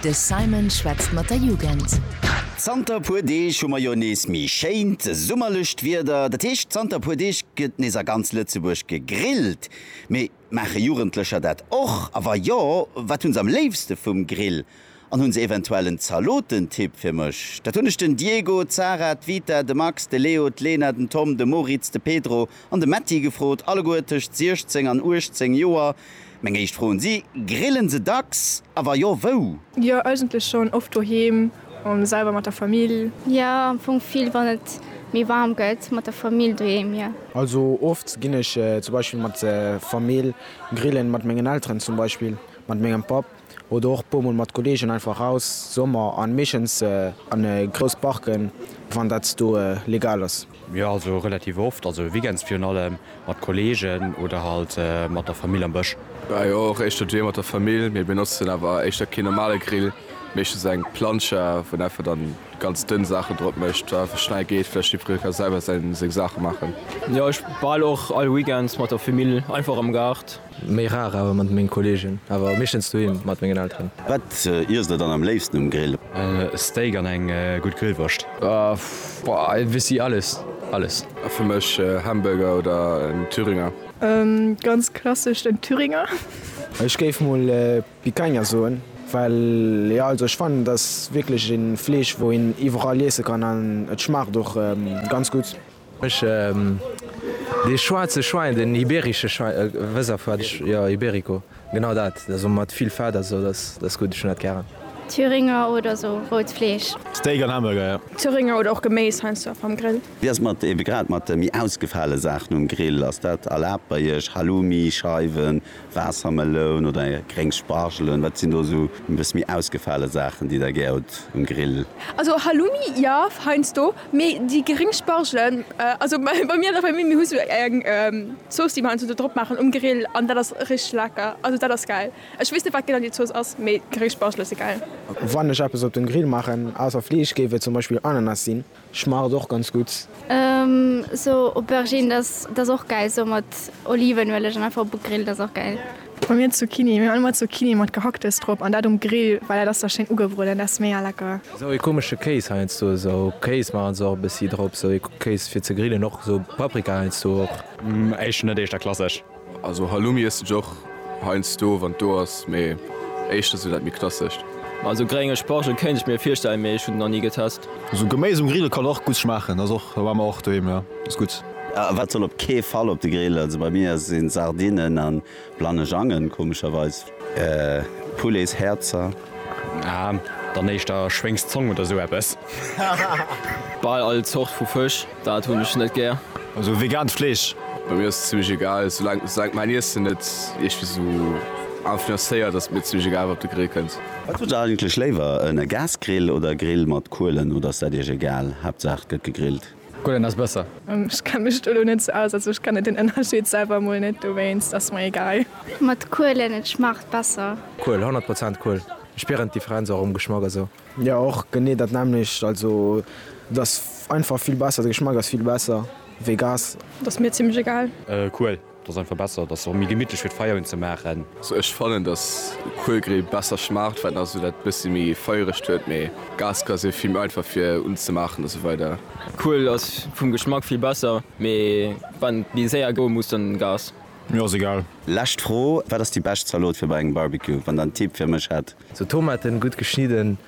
De Simon schwätzt mat der Jugend. Zanter e puer Deeg hu mer jo nees méi schéint summerlecht Wieder. Dat heescht, zanter e puer Deeg gëtt nees a ganz Lëtzebuerg gegrillt. Mee maache Jugendlecher dat och? A wa jo, wat hu se am léifste vum Grill? An hunn se eventuell en Zaloten-Tipp fir mech? Dat hunn ech den Diego, d'Sarah, d'Vita, de Max, de Leo, d'Lena, den Tom, de Moritz, de Pedro an de Metti gefrot, alleguer tëscht 16 an 18 Joer. Meng éischt Fro un si, Grillen se dacks? A wa jo, wou? Jo, eigentlech schonn oft doheem a selwer mat der Famill. Jo, am Fong vill wann et méi waarm gëtt, mat der Famill doheem, jo. Also oft ginn ech zum Beispill mat der Famill grillen, mat mengen Elteren zum Beispill, mat mengem Papp. oder och puer mol mat Kollegen einfach raus Sommer an meeschens an e grouss Parken wann dat do legal ass. Jo also relativ oft, also Weekends virun allem mat Kollegen oder halt mat der Famill am Bësch. Jo och éischter duerjeer mat der Famill, mee benotzen awer éischter keen normale Grill, meeschtens eng Plancha wou en einfach dann ganz dënn Saachen drop mécht, einfach schnell geet, vläicht jiddferee ka selwer seng Saache maachen. Jo ech bal och all Weekends mat der Famill einfach am Gaart. Méi rar awer mat mengen Kollegen, awer meeschtens doheem mat mengen Elteren. Wat iess der dann am léifsten um Grill? Steak an eng gutt Grillwurscht. Boah e bessi alles alles. Fir mech Hamburger oder en Thüringer. Ganz klassesch den Thüringer. Ech géif mol Picanha soen, well jo also ech fannen et ass wierklech een Fleesch wou een iwwerall iessen kann an et schmaacht och ganz gutt. Ech dee schwaarze Schwein, den iberische Schwein, wëss a wat ech, jo, ibérico, genau dat, also mat vill Fett a sou, dat ass gutt, ech hunn dat gären. Thüringer oder sou rout Fleesch. Steak an Hamburger, jo. Thüringer oder och Geméis heiansdo am Grill. Wéi ass et mat ebe grad mat méi ausgefale Saachen um Grill? Ass dat erlaabt bei iech, Halloumi, Scheiwen, Waassermeloun oder gréng Spargelen, wat sinn do esou e bësse méi ausgefale Saachen, déi der gär hutt um Grill? Also Halloumi jo, heiansdo, mee déi gréng Spargelen, also bei mir an der Famill, mir hu sou eng Zooss, déi mer heiansdo do drop maachen um Grill an dat ass richteg lecker. Also dat ass gäil. Ech weess net, wat genau déi Zooss ass, mee gréng Spargele si gäil. Wann ech eppes op den Grill maachen, ausser Fleesch, géif et zum Beispill Ananas sinn. Schmaacht och ganz gudd. Sou Aubergine dat ass och gäil sou mat Olivenueleg an einfach op e Grill, dat ass och gäil. Bei mir Zucchini, mir hu ëmmer Zucchini mat Gehacktes drop an dat um Grill well dat ass da schéin ugebrueden, dat ass mega lecker. Sou ee komesche Kéis heiansdo, sou Kéis maachen se och e bëssi drop, sou ee Kéis fir ze grillen, och sou Paprika heiansdo och. Eischter net, eischter klassesch. Also Halloumi iessen ech och heiansdo wann et do ass, mee éischter sou dat méi klassescht. Also grénge Spargel kéint ech mir virstellen, mee ech hunn en nach ni getest. Sou Geméis um Grill kann och gutt schmaachen, ass och, war mer och doheem, jo ass gutt. Wat soll op kee Fall op de Grill, also bei mir sinn Sardinen an Blanejangen komescherweis. Poulets Häerzer. Ah, dann éischter Schwéngs Zong oder sou eppes. Bal all Zort vu Fësch, dat hunn ech net gär. Also vegaant Fleesch. Bei mir ass et zimlech egal, soulank mäin Iessen net iergwéi sou influencéiert, ass et mir zimlech egal wat op de Grill kënnt. Wat hutt der eigentlech léiwer, en Gasgrill oder e Grill mat Kuelen, oder ass dat iech egal, Haaptsaach et gëtt gegrillt? Gullen ass besser. Ech kenne mech do elo net sou aus, also ech kenne den Ënnerscheed selwer emol net, dowéinst ass mer egal. Mat Kuelen, et schmaacht besser. Kuel, 100 Prozent Kuel. Ech spieren d'Differenz och um Geschmack a sou. Jo och genee dat nämmlecht, also et ass einfach vill besser, de Geschmack ass vill besser wéi Gas. Ass mir zimmlech egal. Kuel. Et ass einfach besser, et ass och méi gemittlech fir d'Feier unzemaachen. Also ech fannen dass Kuelgrill besser schmaacht well en ass esou dat bëssi méi feieregt huet, mee Gasgrill ass jo vill méi einfach fir unzemaachen a sou weider. Kuel ass vum Geschmack vill besser, mee wann déi séier goe muss dann Gas. Mir ass egal. Lescht Fro, wat ass déi bescht Zalot fir bei engem Barbecue? Wann der en Tipp fir mech hätt? Tomaten gutt geschnidden.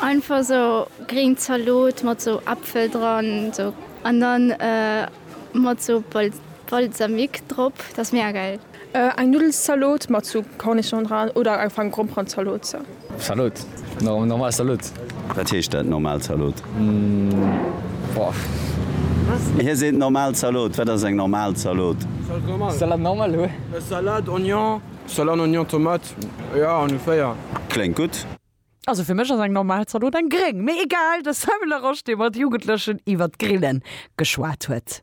Einfach sou gréng Zaloot mat sou Äpfel dran sou an dann mat sou Balsamique drop, dat ass mega geil. Eng Nudelszaloot mat sou Cornichon dran oder einfach eng Gromperenzaloot sou. Zaloot, normal Zaloot. Wat heescht dat normal Zaloot? Hie seet normal Zaloot, wat ass eng normal Zaloot? Salade normale hu. Salade, Oignon, Salade, Oignon, Tomate, jo ongeféier. Kléngt gutt. Also fir mech ass eng normal Zalot eng gréng, mee egal. De Samuel Laroche, dee mat Jugendlechen iwwert d'Grillen geschwat huet.